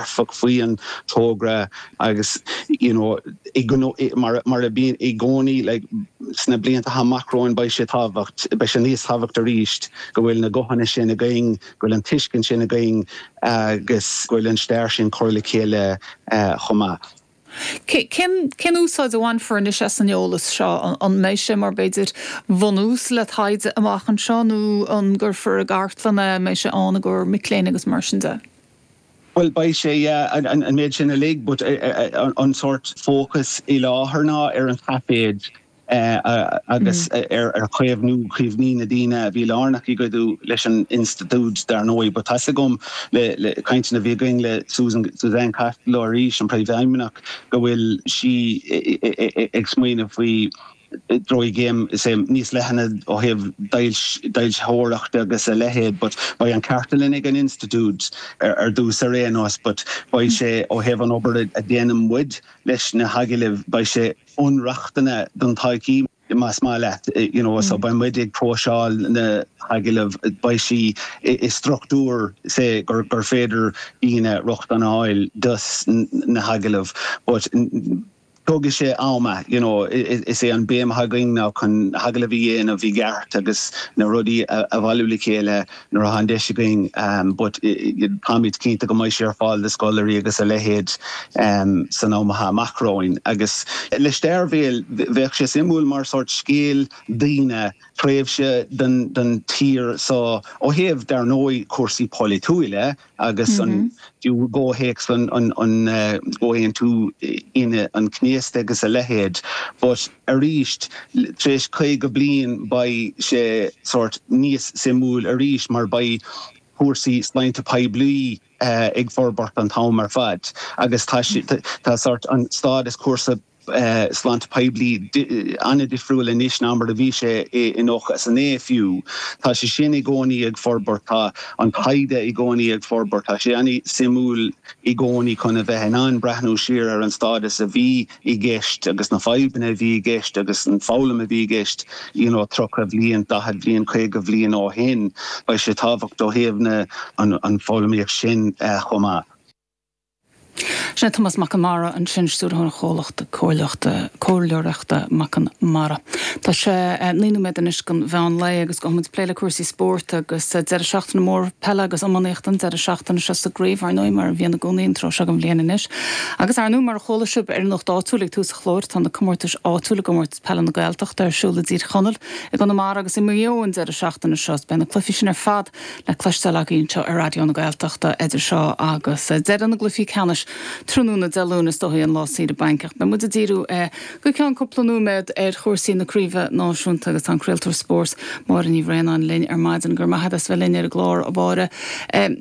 dearfach faoi an togra agus you know mar mar a bíonn i gcónaí like sna blianta amach romhainn beidh sé tábhacht beidh sé níos tábhacht arís go bhfuil na guthanna sin againn go bhfuil an tuiscint sin againn agus go bhfuil an stair sin curtha le chéile chomh maith. Cén úsáid a bhainfear anois as an eolas seo? An mbeidh sé mar, b'fhéidir, bhunús le taighde amach anseo nó an gcuirfear i gcartlann é, an mbeidh sé ann i gcomhair mic léinn agus mar sin de? Bhuel, beidh sé, yeah, an méid sin uilig but tá an sórt fócas faoi láthair ná ar an taifid agus ar chaomhnú cuimhní na ndaoine a bhí lárnach i gcuidiú leis an institiúid. Dar ndóigh, but tá a fhios agam le le cainteanna a bhí againn le Susan, Suzanne Costello arís, an Príomhfheidhmeannach, go bhfuil sí ag smaoineamh faoi dhréimse níos leithne ó thaobh d'fhoilsitheoireacht agus a leithéid but beidh an cartlann ag an institiúid ar dtús ar aon nós but beidh sé ó thaobh an obair a dhéanann muid leis na hagallaimh beidh sé bunreachtanna don todhchaí más maith leat you know so beidh muid ag próiseáil na hagallaimh beidh sí i struchtúr sa chaoi gur féidir daoine rochtain a fháil do na hagallaimh but tógfaidh sé am you know is é an béim atá againn ná chun hagallaimh a dhéanamh i gceart agus na rudaí a bhailiú le chéile Nuair atá an deis againn but táimid cinnte go mbeidh sé ar fáil do scoláirí agus a leithéid san am atá amach romhainn. Agus le stair bhéil, bheadh sé suimiúil mar sórt scéal daonna, tréimhse don tír so ó thaobh, dar ndóigh, cúrsaí poilitiúila, agus fiú i gcomhthéacs an Chomhaontú Aoine an Chéasta agus a leithéid. But arís, tar éis caoga bliain beidh sé sórt níos suimiúil arís mar beidh cúrsaí sláinte poiblí ag forbairt an t-am ar fad agus tá sórt an stádas cúrsaí sláinte poiblí an-difriúil anois ná mar a bhí sé i 99 fiú. Tá sé sin i gcónaí ag forbairt, tá an taighde i gcónaí ag forbairt. Tá sé an-suimiúil i gcónaí chun a bheith in ann breathnú siar ar an stádas a bhí i gceist agus na fadhbanna a bhí i gceist agus an foghlaim a bhí i gceist you know 30 bhliain, 40 bhliain, 50 bhliain ó shin. Beidh sé tábhachtach ó thaobh na. an foghlaimíocht sin chomh maith. Sin é Tomás Mac an Mhara ansin, Stiúrthóir an Chomhlachta Comhairleachta Comhairleoireachta Mac an Mara. Tá sé naoi nóiméad anois don mheán lae agus gabhfaidh muid ag plé le cúrsaí spóirt agus deireadh seachtaine mór peile agus iománaíochta an deireadh seachtaine seo sa gcraobh, ar ndóigh, mar a bhíonn i gcónaí an tráth seo den bhliain anois. Agus, ar ndóigh, mar a chuala sibh ar Nuacht Áitiúil ag tús an chláir, tá na comórtais áitiúil i gComórtas Peile na Gaeltachta ar siúl i dTír Chonaill, i gConamara agus i Maigh Eo an deireadh seachtaine seo. Is beidh na cluichí sin ar fad. le cloisteáil againn anseo ar Raidió na Gaeltachta idir seo agus deireadh na gcluichí ceannais tráthnóna Dé Luain, is dóigh, an lá saoire bainc. Ach beidh muid ag díriú go ceann cúpla nóiméad ar chúrsaí na craobhacha náisiúnta agus tá an craoltóir spóirt Máire Ní Bhraonáin linn ar maidin. Go raibh maith agat as bheith linn ar an gclár, a Mháire.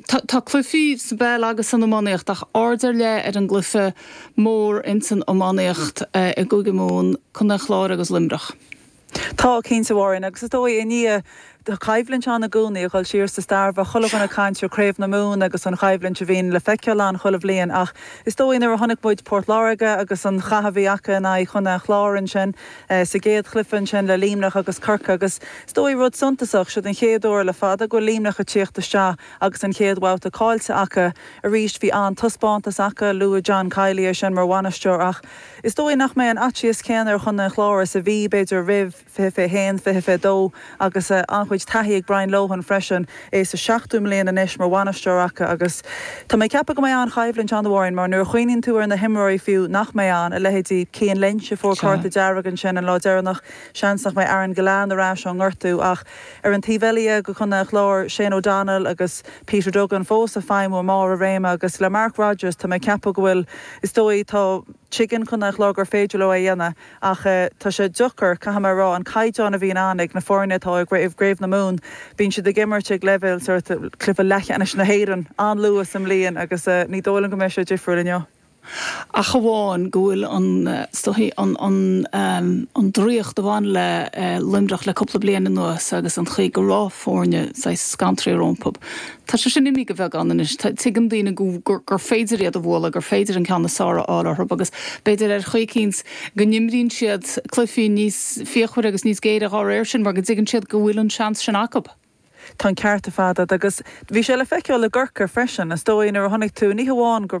Tá cluichí sa bpeil agus san iománaíocht ach aird ar leith ar an gcluiche mór insan iománaíocht i gCúige Mumhan, Contae an Chláir agus Luimneach. Tá, cinnte, a Mháirín, agus is dóigh, i ndáiríre coimhlint ann i gcónaí a dhul siar sa stair, bheadh chuile dhuine ag caint ar Craobh na Mumhan agus an choimhlint a bhíonn le feiceáil ann chuile bhliain ach is dóigh nuair a chonaic muid Port Láirge agus an cath a bhí acu in aghaidh Chontae an Chláir ansin sa gcéad chluiche, ansin le Luimneach agus Corcaigh agus is dóigh rud suntasach, seo an chéad uair le fada go bhfuil Luimneach ag tíocht isteach agus an chéad bhabhta caillte acu arís, bhí an-taispeántas acu, luaigh John Kiely é sin mar bhainisteoir ach. Is dóigh nach mbeidh an faitíos céanna ar Chontae an Chláir is a bhí, b'fhéidir, roimh 2021, 2022 agus an-chuid taithí ag Brian Lohan freisin, é sa seachtú mbliain anois mar bhainisteoir acu agus tá mé ag ceapadh go mbeidh an-choimhlint ann, a Mháirín, mar nuair a chuimhníonn tú ar na himreoirí fiú nach mbeidh ann, a leithéidí Cian Lynch a fuair cárta dearg ansin an lá deireanach, seans nach mbeidh Aaron Gillane ar ais ón ngortú ach ar an taobh eile de Chontae an Chláir, Shane O'Donnell agus Peter Duggan fós ag feidhmiú i mbarr a réime agus le Mark Rodgers, tá mé ag ceapadh go bhfuil is dóigh. tuigeann Contae an Chláir gur féidir leo é a dhéanamh ach tá sé deacair, caithfidh mé a rá, an caighdeán a bhíonn ann ag na foirne atá i gcraobh na Mumhan. Bíonn siad ag imirt ag leibhéal sórt of cluiche leathcheannais na hÉireann an-luath sa mbliain agus ní dóigh liom go mbeidh sé difriúil inniu. ach amháin go bhfuil an, is dóigh, an draíocht a bhain le Luimneach le cúpla bliain anuas agus an chaoi go raibh foirne saghas scanraithe rompu, Tá sé sin imithe de bheagán anois. Tuigeann daoine gur féidir iad a bhualadh, gur féidir an ceann is fearr a fháil orthu agus b'fhéidir ar chaoi eicínt go n-imríonn siad cluichí níos fíochmhaire agus níos géire dhá réir sin mar go dtuigeann siad go bhfuil an seans sin acu. Tá an ceart ar fad a'd. Agus bhí sé le feiceáil i gCorcaigh freisin, is dóigh, nuair a chonaic tú ní hamháin go